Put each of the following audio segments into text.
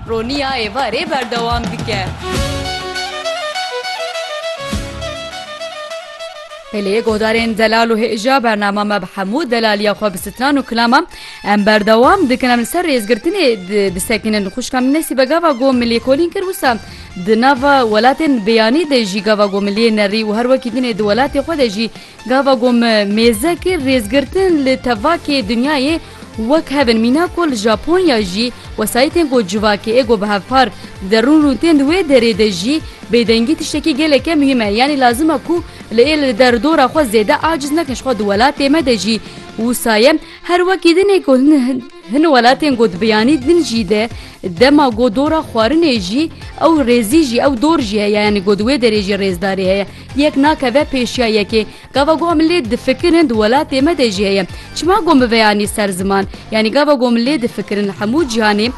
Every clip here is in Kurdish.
Roniya êvarê berdewam dike. Peleyê guhdarên delal û hêja bernama me bi hemû delaliya xwe bi stran û kilama em berdewam dikin em li ser rêzgirtinê disekinin xuşka min nesîbe gava got min lêkolîn kir wisa di nava welatên bêyanî de jî gava got min lê nerî û her wekî dinê di welatê xwe de jî gava got min mêze kir rêzgirtin li tevakê dinyayê Wek hevin mîna ku li Japonya jî wesayîtên ku civakê ê ku bi hev par dide rûn rûn tên di wê derê de jî bêdengî tiştekî geleke muhîm e yanî lazim e ku li ê li der dora xwe zêde aciz nekin jixwe di welatê me de jî wisa ye her wekî din ê ku hin welatên ku di biyanî din jî de dema ku dora xwarinê jî ew rêzî jî ew dor jî heye yanî ku di wê derê jî rêzdarî heye yek nakeve pêşiya yekê Gava got min lê difikirin di welatê me de jî heye. Çima got min veyanî ser ziman? Yanî gava got min lê difikirin li hemû cîhanê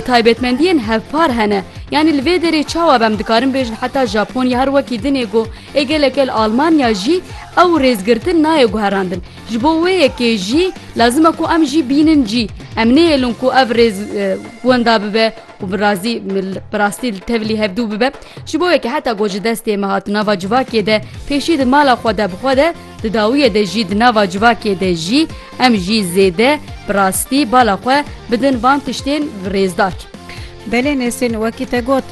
taybetmendiyên hevpar hene. Yanî li vê derê çawa be em dikarin bêjin heta Japonya her wekî din ê got ê geleke li Almanya jî ew rêzgirtin nayê guherandin. Ji bo wê yekê jî lazim e ku em jî bînin cî. Em nêhêlin ku ev rêz wenda bibe û bi razî bi rastî li tevlî hevdû bibe ji bo yekê heta ku ji destê me hat nava civakê de pêşî di mala xwe de bixwe de di dawiyê de jî di nava civakê de jî em jî zêde bi rastî bala xwe bidin van tiştên rêzdar. Belê Nesrîn wekî te got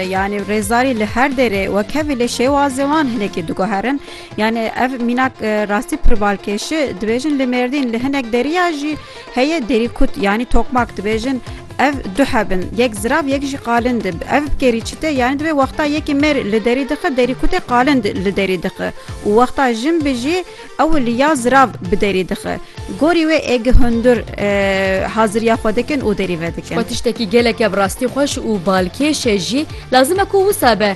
yanî rêzdarî li her derê wekevî lê şêwazê wan hinekî diguherin yanî ev mînak rastî pirvalkêşi dibêjin li mêrdîn li hinek deriya jî Heye derî kut yanî tokmak dibêjin ev du heb in yek zirav yek jî qalind e. Ev bi kêrî çi tê yanî divê wexta yekî mêr li derî dixe derî kutê qalind li derî dixe û wexta jin bijî ew li ya zirav bi derî dixe. Gorî wê ê gi hundir haziriya xwe dikin û derî vedikin. Xwe tiştekî geleke bi rastî xweş û balkêş e jî lazim e ku wisa be.